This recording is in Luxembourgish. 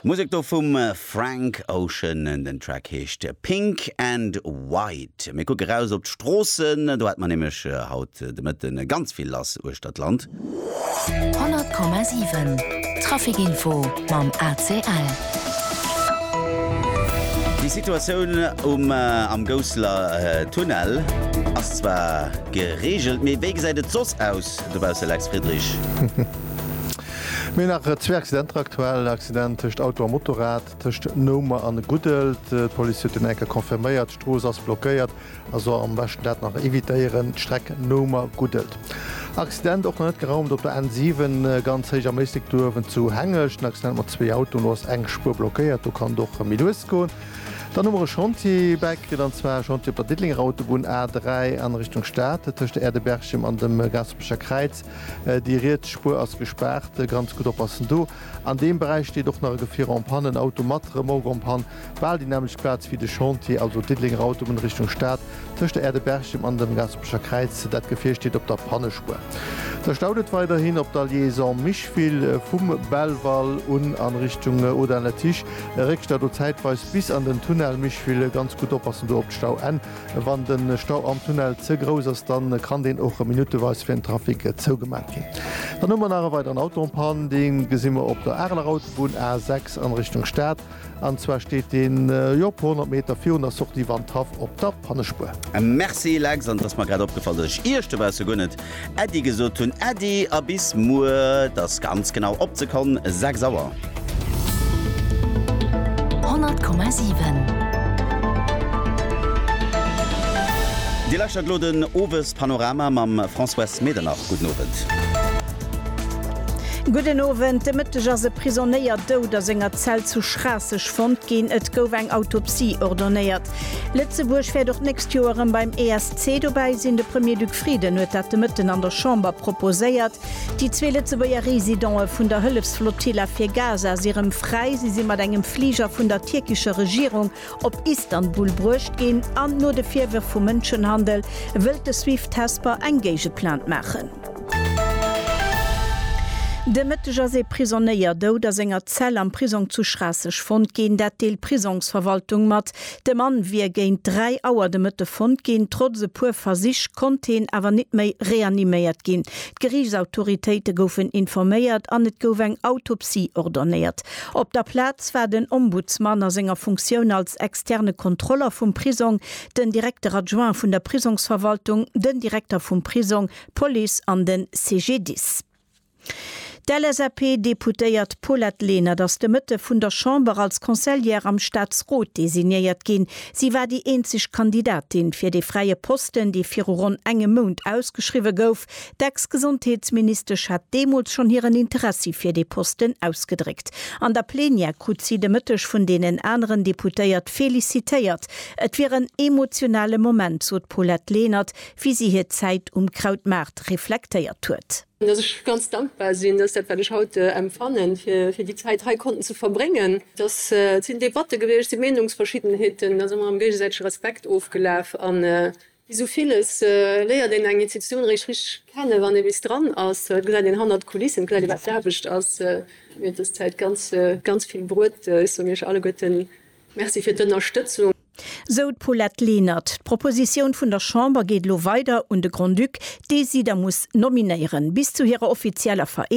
Musek do vum Frank Ocean, den Track heescht Pink and White. Mir kucke raus op d'Stroossen, do hat mer nämlech haut de Mëtten ganz vill lass uechter d'Land. 100,7 Traficinfo mam ACL. Déi Situatioun um am Gousseler Tunnel ass zwar gereegelt, mee wéi gesäit et soss aus dobausse Lex Friedrich? Mir hunn nach zwee Accidenter aktuell, en Accident tëscht Auto a Motorrad tëscht Noumer an Guddelt. D'Police huet deen enker confirméiert. D'Strooss ass blockéiert, also am beschten dat nach evitéieren, d'Streck Noumer-Guddelt. Accident och nach net geraumt op der N7, ganz héich am Méislek duerwen zu Hengescht. En Accident mat zwee Autoen, do ass eng Spuer blockéiert, do kann et och méi lues goen. Dann hu mer e Chantier bäikritt, an zwar e Chantier op der Diddelenger Autobunn A3 an Richtung Stad, tëscht Aerdeberchem an dem Gaaspercher Kräiz. déi riets Spuer ass gespaart, ganz gutt oppassen do. An deem Beräich steet och nach e Gefier en panne, en Auto mat Remorque en panne, bal déi nämmlecht Plaz wéi de Chantier, also Diddelenger Autobunn Richtung Stad, tëscht der Aire de Berchem an dem Gaspercher Kräiz. Dat Gefier steet op der Pannespuer. Da staut et weiderhin op der Liaison Micheville vum Belval un an Richtung Audun-la-Tiche. Réckstau do zäitweis bis an den Tunnel Micheville, ganz gutt oppassen do op d'Stauenn. Wann de Stau am Tunnel ze grouss ass, dann kann deen och minuteweis fir den Trafic zougemat ginn. Dann hu mer nach e weideren Auto en panne, dee gesi mer op der Areler Autobunn A 6 an Richtung Stad. An zwar steet deen jo e puer honnert Meter virun der Sortie Wandhaff op der Pannespuer. Merci Lex, an et ass mer grad opgefall, dass ech Iecht dobausse guer net Äddi gesot hunn. Äddi a bis muer, et ass ganz genau op d'Sekonn 6 Auer. 100,7. Dir lauschtert elo den Owespanorama mam Françoise Medernach. Gudden Owend. Gudden Owend. De Mëtteg ass e Prisonéier dout a senger Zell zu Schraasseg fonnt ginn. Et gouf eng Autopsie ordonéiert. Lëtzebuerg wäert och d'nächst Joer erëm beim ESC dobäi sinn. De Premier-Duc Frieden huet dat de Mëtten an der Chamber proposéiert. Déi zwee Lëtzebuerger Residente vun der Hëllefsflotilla fir Gaza si rëm fräi. Si si mat engem Fliger vun der tierkescher Regierung op Istanbul bruecht ginn an no de Virwërf vu Mënschenhandel wëllt de Swift Hesper eng Géigeplainte maachen. De Mëtteg ass ee Prisonnéier dout a senger Zell am Prisong zu Schraasseg fonnt ginn. Dat deelt d'Prisongsverwaltung mat. De Mann wier géint 3 Auer de Mëtte fonnt ginn. Trotz e puer Versich konnt heen awer nit méi reaniméiert ginn. D'Geriichtsautoritéite goufen informéiert an et gouf eng Autopsie ordonnéiert. Op der Plaz war den Ombudsman a senger Funktioun als externe Kontroller vum Prisong, den Directeur adjoint vun der Prisongsverwaltung, den Direkter vum Prisong, d'Police an de CGDIS. D'LSAP-Deputéiert Paulette Lenert ass de Mëtte vun der Chamber als Conseillère am Staatsrot designéiert ginn. Si war déi eenzeg Kandidatin fir dee fräie Posten, dee viru ronn engem Mount ausgeschriwwe gouf. D'Ex-Gesondheetsministesch hat deemools schonn hiren Interessi fir dee Posten ausgedréckt. An der Plenière krut si de Mëtteg vun deenen aneren Deputéiert felicitéiert. Et wier en emotionale Moment, sot d'Paulette Lenert, wéi si hir Zäit um Krautmaart reflektéiert huet. Dass ech ganz dankbar sinn, dass dat wat ech haut empfannen, fir déi Zäit hei konnten ze verbréngen. Dass et sinn Debatte gewiescht, et si Meenungsverschiddenheeten, da si mer am géigesäitege Respekt ofgelaf. A wéi esou villes léiert een eng Institutioun eréischt richteg kennen, wann ee bis dran ass. Et gesäit een hannert d'Kulissen, et gesäit ee wat d'Aarbecht ass. Mir huet dës Zäit ganz, ganz vill bruet. Ech soen iech alleguerten Merci fir d'Ënnerstëtzung. Sou d'Paulette Lenert. D'Propositioun vun der Chamber geet elo weider un de Grand-Duc, dee si da muss nominéieren. Bis zu hirer offizieller Vereedegung